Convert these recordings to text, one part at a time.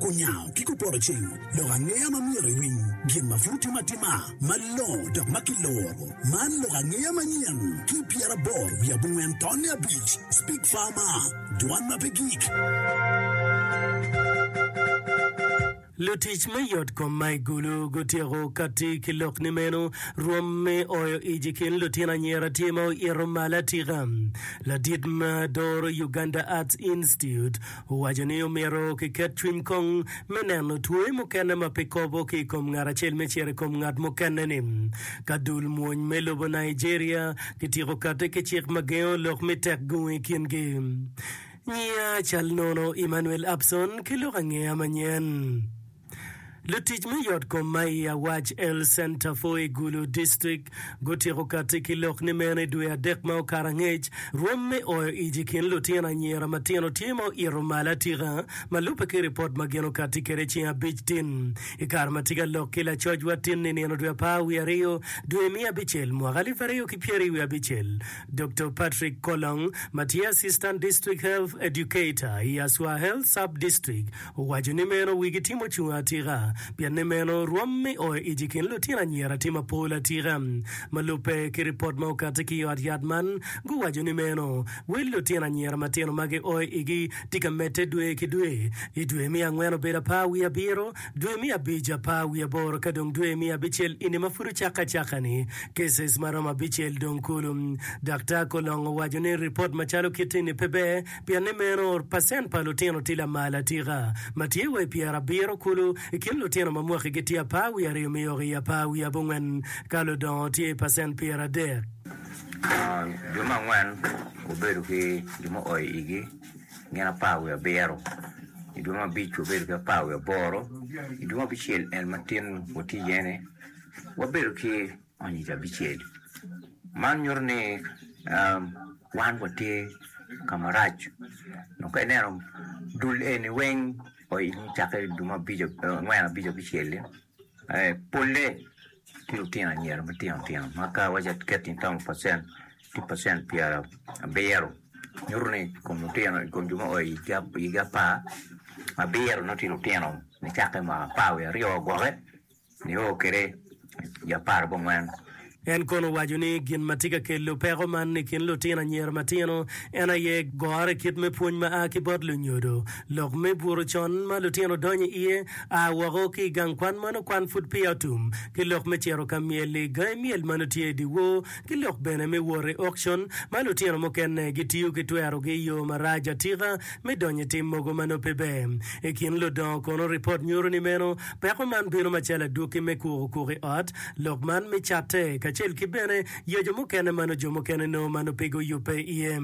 Kunyango ki kuporo cing, lok angeya ma myero iwiny, gin ma pud timo atima, malongo dok ma kiloro. Man lok angeya manyen, ki pyeraboro wiye abongwen tonne abic, Speak Farmer, Dwan ma pe gik. Lutic me yotkom ma i Gulu gutyeko kati ki lok ni meno, Rwom me oyo ic i kin lutino anyira tye ma oito malo atika. Ladit ma doro Uganda Arts Institute, Owaco ni omyero kiket cwiny kong me neno twoe mukene ma pe kobo ki i kom ngat acel me cito i kom ngat mukene-ni. Ka dul mwony me lobo Nigeria kityeko kati ki cik ma gengo lok mi tek gung i kingi. Nyiya cal nono Emmanuel Abson ki lok angeya manyen. Lutic me yotkom ma i Awac El Centerfoe Gulu District gutyeko kati ki lok ni meno i dwe adek ma okato angec, rwom me oyo ic i kin lutino anyira matino tye ma oito malo atika ma lubbe ki ripot ma gin okati kwede ceng abic tin i kare ma tye ka lok ki lacocwa tin ninino dwe apar wiye aryo dwe me abicel mwaka alip aryo ki pyeri wiye abicel. Doktor Patrick Kolong ma tye Assistant District Health Educator i Aswa Health Sub-District Owaco ni meno wigi timo ocung atika pienni meno rwom me o ic i kin lutino anyira tye mapol atika. Ma lubbe ki ripot ma okati ki i ot yat man guwaco ni meno wel lutino anyira matino ma gio igi tye ka medde dwe ki dwe, i dwe me angwen obedo apar wiye abiro, dwe me abic apar wiye aboro ka dong dwe me abicel eni ma pud ocakke acakka-ni cases maromo abicel dong kulu. Daktar Kolong owaco ni ripot macalo kit eni pe ber Pien ni meno, pacent pa lutino tye lamal atika, ma tye wa i pyerabiro kulu i kin lutino ma mwakigi tye apar wiye aryo miyoko i apar wiye abongwen, ka ludongo tye i pacent pyeradek. Jo me angwen wabedo ki jo ma oa i igi gin apar wiye abiro, i dwe me abic wabedo ki apar wiye aboro, i dwe me abicel en matin watye iye-ni wabedo ki. Anyira abicel. Man nyuto ni wan watye ka marac dok ka ineno dul eni weng oilni cakke i dul ma angwen abic abicel-li polle tye lutino anyira matino tino ma ka iwaci aket in twero pacen tye pacen pyerabiro nyuto ni i kom lutino i kom jo ma oi i higgi apar abiro nongo tye lutino nicakke ma apar wiye aryo wa gwokke Nio kwede i apar ki angwen. En kono owaco ni gin ma tye ka kelo peko man i kin lutino anyira matino en aye gore kit me pwony ma a ki bot lunyodo, lok me buto con ma lutino donyo i iye, a woko ki i gang kwan ma nongo kwan pud peya otum, ki lok me cito ka myel i gangi myel ma nongo tye i dyewor, ki lok bene me wot i okcon ma lutino mukene gitiyo ki twerogi i yo marac atika. me donyo i tim mogo ma nongo pe ber. I kin ludongo kono, ripot nyuto ni meno peko man bino macalo adwoki me kuko kuko i ot, lok man me catte, kacel ki bene yeco mukene ma nongo jo mukene nongo ma nongo pe guyubbe iye.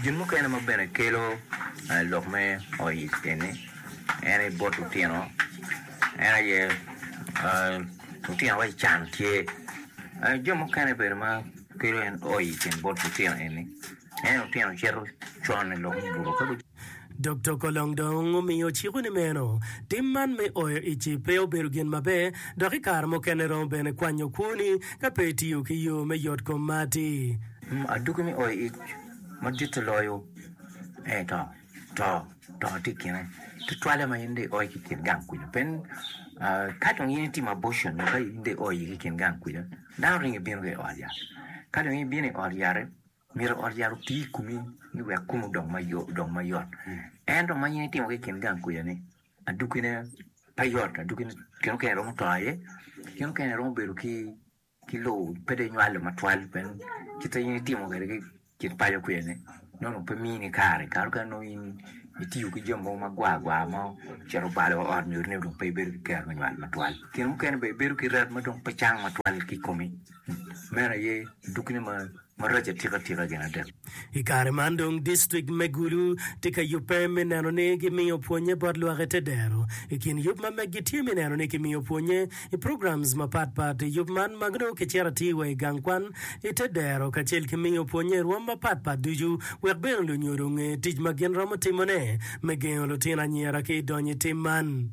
Gin mukene ma bene kelo lok me oic eni en aye bot lutino, en aye lutino waci can tye, jo mukene bene ma kelo en oic bot lutino eni Dokto Kolong dong omiyo ciko ni meno tim man me oyo ici pe obedo gin maber dok i kare mukene romo bene kwanyo kwoni ka pe itiyo ki yo me yot kom ma atir. Adwogi me oyo ic madito loyo en to. To to tye i kine tutwalle ma in dong ioyo ki i kin gang kwija pe ka dong in itimo abortion nyo ka in dong ioyo ki i kin gang kwija dano ringo ibino ki i ot yat ka dong ibino i ot yat-ti. Myero ot yat oti i komi ni wek komi odong mayot. Ento ma in itimo ki i kin gang kwidani, adukkine pe yot, adukkine kine mukene iromo to aye, kine mukene iromo bedo ki lowo pe dong inywalo matwal pien kit ma in itimo kwede ki i kin paco kwidani nongo dong pe mini kare, kare mukene nongo in itiyo ki jami mogo magwar gwar ma ocito obalo wa ot nyutini dong pe ibedo ki kero me nywal matwal. Kine mukene bene ibedo ki ret ma dong pe cang matwal ki i komi. Meno aye dukkine marac atikatika gin adek. I kare man dong distrik me Gulu tye ka yubbe me neno ni gimiyo pwonye bot lwak i te dero. I kin yub ma meggi tye me neno ni kimiyo pwonye i programs mapat pat i yub man ma nongo kicito atir wa i gang kwan i te dero kacel ki miyo pwonye i rwom mapat pat ducu wek bene lunyodo onge tic ma gin romo timone me gengo lutino anyira ki i donyo i tim man.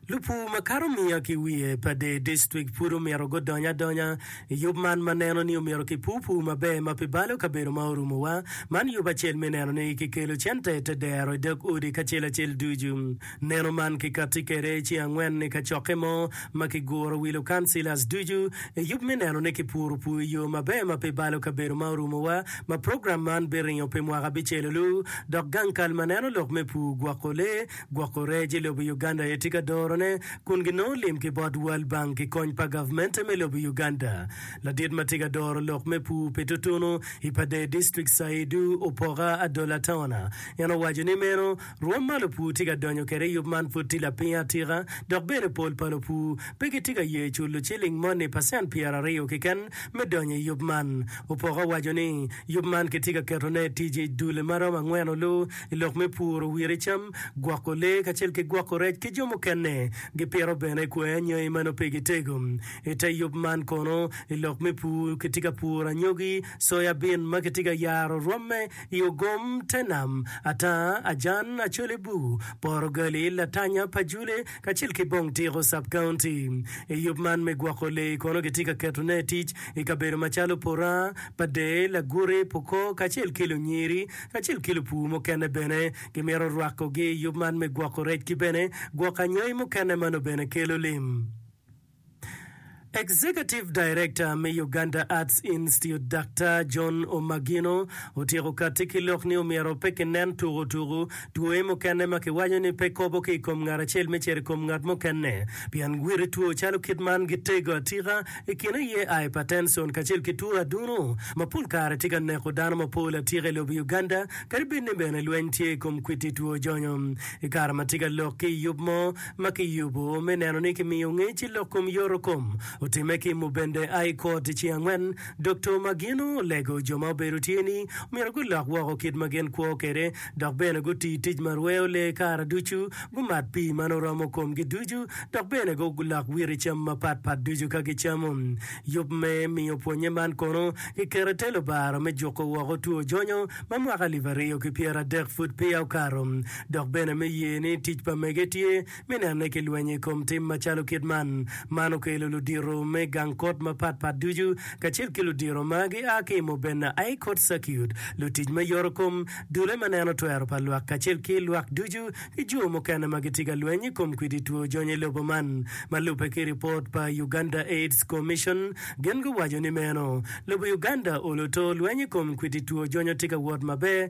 Lupur ma kato miya ki wiye pa dee dictrict pud omito gudony adonya i yub man ma neno ni omito ki pur pur maber ma pi balo kabedo ma orumo wa. Man yub acel me neno ni ki kelo cente te dero i dog odi kacel acel ducu. Neno man ki kati kwede ceng angwen i kacokke mo ma ki guro wilo councillors ducu i yub me neno ni ki puro pur i yo maber ma pi balo kabedo ma orumo wa ma program man biringo pi mwaka abicel olu dok gang kal ma neno lok me pur gwoko lee Gwoko rec i lobo Uganda aye tye ka dorone kun ginongo lim ki bot World Bank ki kony pa gavmente me lobo Uganda. Ladit ma tye ka doro lok me pur pi tutunu i Pader District Saidu Opoka Adola Tawana en owaco ni meno rwom ma lupur tye ka donyo kwede i yub man pud tye lapiny atika dok bene pol pa lupur pe gitye ka ye culo ciling moni pacent pyera aryo keken me donyo i yub man. Opoka owaco ni yub man kitye ka ketone i tic i dule ma romo angwen olu I lok me puro wire cam, gwoko lee kacel ki gwoko rec ki jo mukene, gipito bene kwer anyogi ma nongo pe gitego. I te yub man kono, i lok me pur kitye ka puro anyogi, soya bin ma kitye ka yaro rwamme i ogom, te nam, atanga, ajan, acole bur, porogali, latanya, pajule, kacel ki bong tiko, sub-county. I yub man me gwoko lee kono kitye ka ketone tic i kabedo macalo Purang, Padee, Laguti, Pokoo, kacel ki Lunyiri. kacel ki lupur mukene bene gimito rwakogi i yub man me gwoko rec ki bene gwoko anyangi mukene ma nongo bene kelo lim. Executive Director me Uganda Arts Institute Daktar John Omagino otyeko katti ki lok ni omyero pe kinen tuku tuku twoe mukene ma kiwaco ni pe kobo ki i kom ngat acel me cito i kom ngat mukene pien gwiti two calo kit man gitego atika I kin aye hypertension kacel ki two adunu ma pol kare tye ka neko dano mapol atika i lobo Uganda kadi bed ni bene lweny tye i kom kwiti two jonyo. I kare ma tye ka lok ki i yub mo ma ki yubo me neno ni ki miyo ngec i lok kom yoto kom otime ki i Mubende High Court i ceng angwen, Doktor Magino olego jo ma obedo tye ni myero gulok woko kit ma gin kwo kwede dok bene guti tic ma rweyo lee kare ducu, gumat pii ma nongo romo komgi ducu, dok bene gulok witi cam mapat pat ducu ka gicamo. Yub me miyo pwonnye man kono kiketo i te lubaro me juko woko two jonyo ma mwaka alip aryo ki pyera adek pud peya okato, dok bene me ye ni tic pa mege tye Me nenne ki lwenyo i kom tim macalo kit man, man okelo ludito me gang kot mapat pat ducu kacel ki ludito ma gia ki i Mobena High Court Circuit, lutic me yoro kom, dulle ma neno twero pa lwak kacel ki lwak ducu ki jo mukene ma gitye ka lweny i kom kwidi two jony i lobo man. Ma lubbe ki ripot pa Uganda AIDS Commission, gin guwaco ni meno, lobo Uganda olo to lweny i kom kwidi two jonyo tye ka wot maber,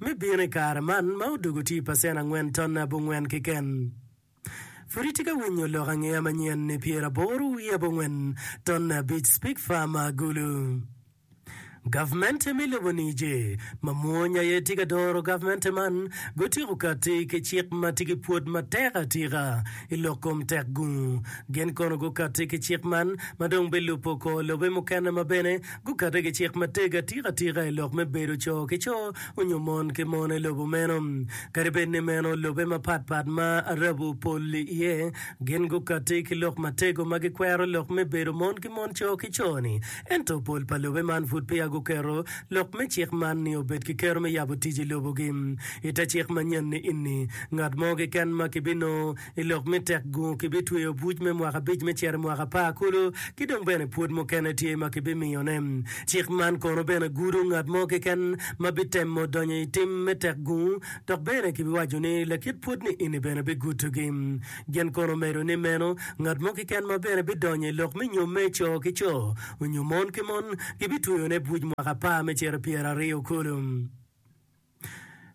me bino i kare man ma odwogo tye i pacen angwen ton abongwen keken. Pud itye ka winyo lok angeya manyen ni pyeraboro wiye abongwen ton abic Speke Farm ma Agulu? Gavmente me lobo Niger, ma mwony aye tye ka doro gavmente man, gutyeko kati ki cik ma tye ki pwod matek atika i lok kom tekgungu. Gin kono gukati ki cik man ma dong bilubo kor lobe mukene ma bene Gukato ki cik matego atika atika i lok me bedo co ki co onyo mon ki mon i lobo meno. Kadi bed ni meno lobe mapat pat ma Arabu pol iye, gin gukati ki lok matego ma gikwero lok me bedo mon ki mon co ki co ni. Ento pol pa lobe man pud peya guketo lok me cik man ni obed ki kero me yabo tic i lobogi. I te cik manyen-ni ini, ngat mo keken ma kibinongo I lok me tek gungu kibitweyo buc me mwaka abic me cito i mwaka apar kulu, ki dong bene pwod mukene tye ma kibimiyone. Cik man kono bene gudo ngat mo keken ma bitemo donyo i tim me tek gungu, dok bene kibiwaco ni lakit pwod ni eni bene bigudogi. Gin kono omedo ni meno, ngat mo keken ma bene bidonyo i lok me nyom me co ki co onyo mon ki mon, kibitweyone buc mwaka apar me cito pyeraryo kulu.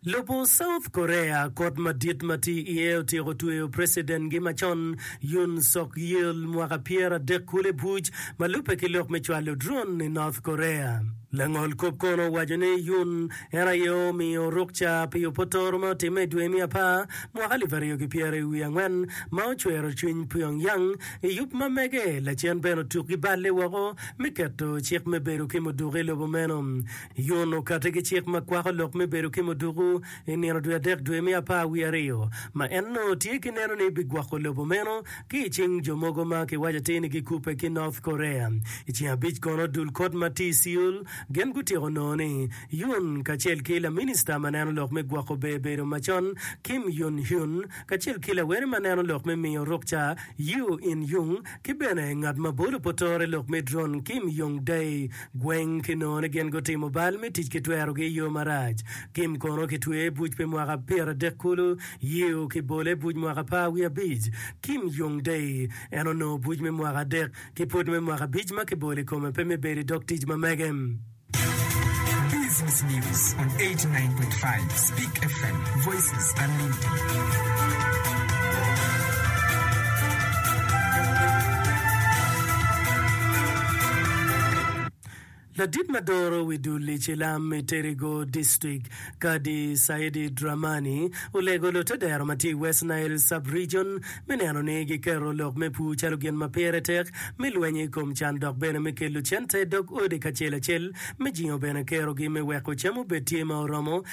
Lobo South Korea kot madit ma tye iye otyeko tweyo preciden gi macon Yoon Suk Yeol mwaka pyer adek kulu i buc ma lube ki lok me cwalo drone i North Korea. Langol kop kono owaco ni Yoon en aye omiyo rukca pi opotoro ma otimme i dwe me apar mwaka alip aryo ki pyeri wiye angwen ma ocwero cwiny Pyongyang i yub ma mege lacen bene otuk gi balle woko me keto cik me bedo ki muduku i lobo meno. Yun okati ki cik ma kwako lok me bedo ki muduku i nino dwe adek dwe me apar wiye aryo, ma en onongo tye ki neno ni bigwoko lobo meno ki i cing jo mogo ma kiwaco atir ni gikubbe ki North Korea. I ceng abic kono dul kot ma tye i Seoul gin gutyeko nongo ni Yun kacel ki laminista ma neno lok me gwoko ber bedo macon Kim Yun Hyun kacel ki lawene ma neno lok me miyo rukca Yoo In Young ki bene ngat ma bolo potore lok me drone Kim Yong Dae Gweng ki nongo ni gin gutimo bal me tic ki twerogi i yo marac. Kim kono kitweye i buc pi mwaka pyeradek kulu, Yew ki bole i buc mwaka par wiye abic. Kim Young Dae, En onongo buc me mwaka adek ki pwod me mwaka abic ma kibolo i kome pe me bedo i dog tic ma mege. Ladit ma doro wi dul i cilam i Terrigo District, Kadi Saidi Dramani, olego lutedero ma tye i West Nile Sub-Region me neno ni giketo lok me pur calo gin ma pire tek me lweny i kom can dok bene me kelo cente i dog odi kacel acel me jingo bene kerogi me weko cam obed tye ma oromo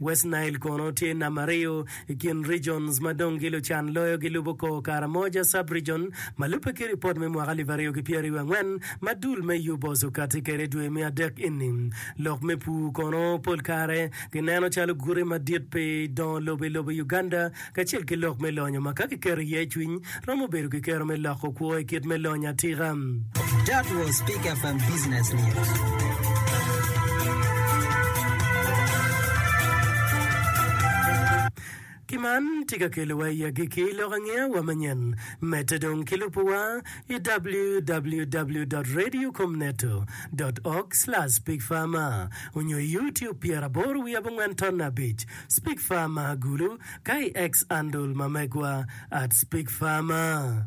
West Nile kono tye nam aryo i kin regions ma dong gi lucan loyo gi lubo kor Karamoja Sub-region ma lubbe ki ripot me mwaka alip aryo ki pyeraryo angwen ma dul me UBOS okati kede dwe me adek ini. Lok me pur kono pol kare ki neno calo gute madit pi dongo lobo i lobo i Uganda kacel ki lok me lonyo ma ka kiketo iye cwiny, romo bedo ki kero me loko kwo i kit me lonyo atika. That was Peak FM Business News. Ki man tye ka kelowa i agikki lok angeya wa manyen. Medde dong ki lubuwa i www.radiocomneto.org/peakfarmer onyo i YouTube pyeraboro wiye abongwen ton abic. Speak Farmer Agulu, KX Andul ma megwa at Speak Farmer.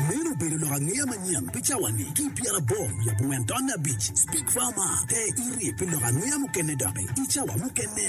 Meno obedo lok angeya manyen pi cawa-ni ki i pyeraboro wiye abongwen tonne abic. Speak Farmer, te iri pi lok angeya mukene doki i cawa mukene.